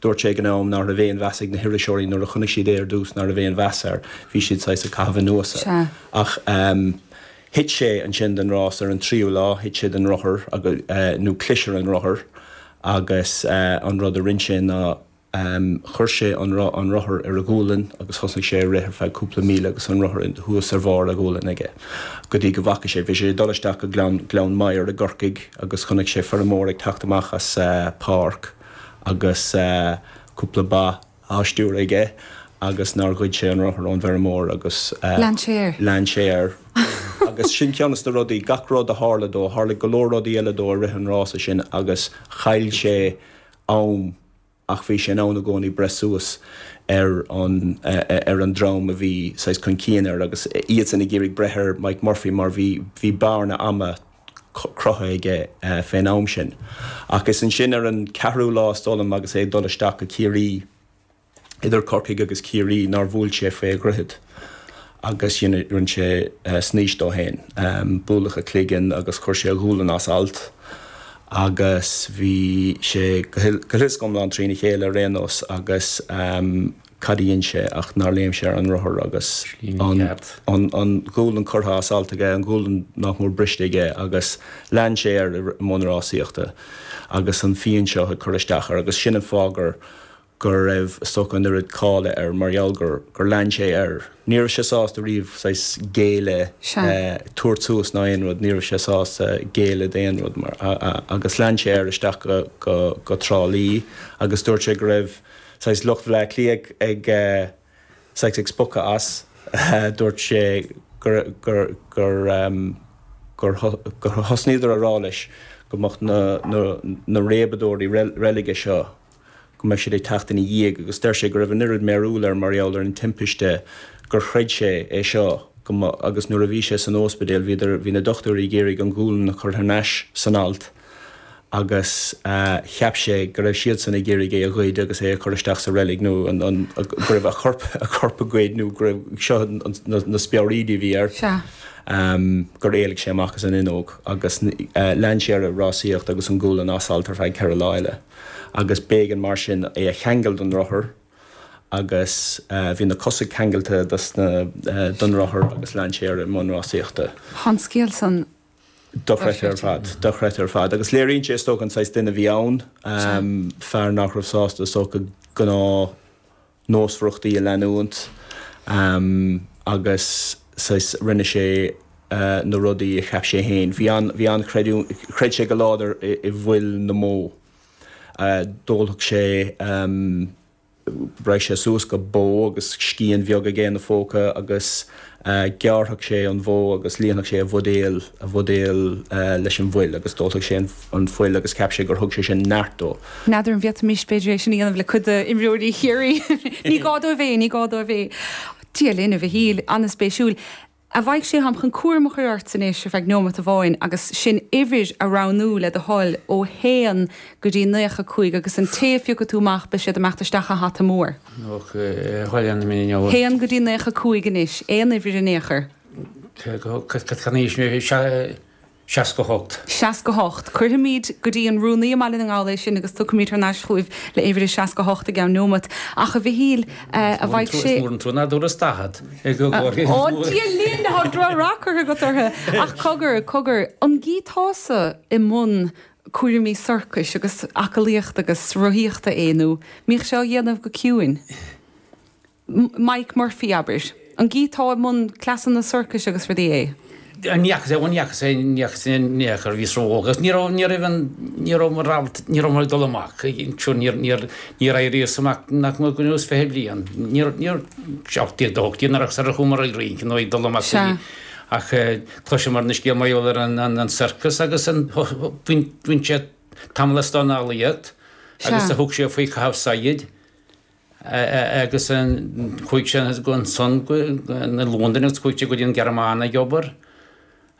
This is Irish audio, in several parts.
Dúirt sé ag an am sin ná raibh aon mheas ag na hiriseoirí nuair a chonaic siad é ar dtús ná raibh aon mheas air, bhí siad saghas ag caitheamh anuas air. Ach thit sé ansin sa rás ar an tríú lá, thit sé den rothar agus, nó chlis ar an rothar agus an rud a rinn sé ná chuir sé an rothar ar a ghualainn agus thosnaigh sé ag rith ar feadh cúpla míle agus an rothar thuas ar bharr a ghualainn aige go dtí go bhfaca sé, bhí sé ag dul isteach go Gleann Gleann Maghair i gCorcaigh agus chonaic sé feirmeoir ag teacht amach as páirc. agus cúpla bó á stiúradh aige agus nár ghoid sé an rothar ón bhfeirmeoir agus lean sé air agus sin ceann dos na rudaí, gach rud a tharla dó, tharla go leor rudaí eile dó i rith an rása sin agus chaill sé am ach bhí sé in ann i gcónaí breith suas ar an, ar an dream a bhí saghas chun cinn air agus iadsan ag iarraidh breith ar Mike Murphy mar bhí, bhí bearna ama. cruthaithe aige fén am sin. Ach is ansin ar an ceathrú lá is dóigh liom agus é ag dul isteach go Ciarraí, idir Corcaigh agus Ciarraí, nár bhuail sé fé an droichead agus rinn sé snaois de féin. Buaileadh a chloigeann agus chuir sé a ghualainn as alt agus bhí sé go huile is go hiomlán trína chéile ar aon nós agus. cad a dhein sé ach nár léim sé ar an rothar agus an ghualainn curtha as alt aige, an ghualainn nach mór briste aige agus lean sé air i mbun rásaíochta agus an phian seo ag cur isteach air agus sin an fáth gur raibh is dócha an oiread cáile air mar gheall gur lean sé air. Ní raibh sé sásta riamh saghas géilleadh, tabhairt suas ná aon rud, ní raibh sé sásta géilleadh d'aon rud mar, agus lean sé air isteach go Trá Lí agus dúirt sé go raibh, saghas lucht Bhleá Cliath ag saghas ag spochadh as. Dúirt sé gur gur gur gur gur thosnaíodar a rá leis go mbeadh na na na réabadóirí reilige seo go mbeadh siad ag teacht ina dhiaidh agus deir sé go raibh an oiread mearbhaill air mar gheall ar an timpiste gur chreid sé é seo go mba agus nuair a bhí sé san óispidéal bhíodar bhí na dochtúirí ag iarraidh an ghualainn a chur thar n-ais san alt agus cheap sé go raibh siadsan ag iarraidh é a ghoid agus é a chur isteach sa reilig nó go raibh, a chorp a ghoid nó go raibh seo na speabhraídí a bhí air gur éalaigh sé amach as an fhuinneog agus lean sé air ag rásaíocht agus an ghualainn as alt ar feadh ceithre lá eile agus b'éigean mar sin é a cheangal don rothar agus bhí na cosa ceangailte don rothar agus lean sé air i mbun rásaíochta. Tá an scéal san Dochreidthe ar fad. Dochreidthe ar fad. Agus léiríonn sé is dócha an saghas duine a bhí ann. Fear nach raibh sásta is dócha gnáth nósmhaireachtaí a leanúint agus saghas rinne sé na rudaí a cheap sé fhéin. Bhí an, bhí an, chreid sé go láidir i bhfuil na mbó. D'ólfadh sé. Raghadh sé suas go bó agus scian bheag aige ina phóca agus ghearrfadh sé an bhó agus líonfadh sé a bhuidéal, a bhuidéal leis an bhfuil agus d'ólfadh sé an fhuil agus cheap sé gur thug sé sin neart dó. N'fheadar an bhféadfaimis, b'fhéidir é sin a dhéanamh le cuid d'imreoirí Chiarraí. Ní gá dóibh é, ní gá dóibh é. Dia linn a Mhichíl, an-spéisiúil. A Mhaidhc Sé, táim chun cúram a chur ortsa anois ar feadh neómat amháin agus sin uimhir a roghnú le do thoil ó haon go dtí naocha cúig agus an té a phiocfaidh tú amach beidh siad ag imeacht isteach sa hata mór. Ok, chuala an mé inniu. Haon go dtí naocha cúig anois, aon uimhir in aon chor. Cad tá in aois mé? Seasca hocht. Seasca hocht. Cuirfimíd go dtí an Rúnaí i mBaile na nGall é sin agus tiocfaimíd thar n-ais chúibh le uimhir a seasca hocht i gceann neómat. Ach, a Mhichíl, a Mhaidhc Sé. Is mór an trua ná dúras daichead. Ó, Dia linn, tá droch rath curtha agat ortha. Ach cogar, cogar, an gcíteása i mbun cúramaí sorcais agus aclaíochta agus rothaíochta é nó an mbíodh sé á dhéanamh go ciúin? Mike Murphy, abair. An gcíteá i mbun cleasanna sorcais agus rudaí é? Ní fhacas, ní fhacas, ní fhacas aon ní acu. Bhíos ró-óg agus ní raibh, ní raibh an, ní raibh mo rabharta, ní raibh mé ag dul amach ag an, sure níor, níor, níor éiríos amach nach mór go bhfuil nós fiche bliain. Níor, níor, sé, ocht déag, dó hocht déag nuair a, sar a chuamar ag rince nó ag dul amach go dtí, ach chloiseamar an scéal mar gheall ar an, an, an sorcas agus an, bhí, bhí sé tamall san Astráil leis agus a thug sé faoi chaitheamh saighead. agus chuaidh sé annsan go Londain agus chuaidh sé go dtí an Ghearmáin ag obair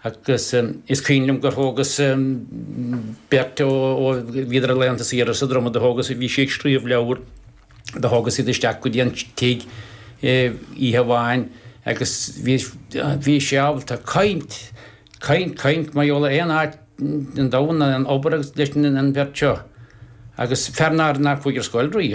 agus is cuimhin liom gur thógas beirt ó bhíodar ar laethanta saoire sa Droma do thógas bhí sí ag scríobh leabhar do thógas iad isteach go dtí an tigh oíche amháin agus bhí bhí sé ábalta caint caint caint mar gheall ar aon áit ar domhan abair leis an bheirt seo agus fear nár nár chuaidh ar scoil riamh.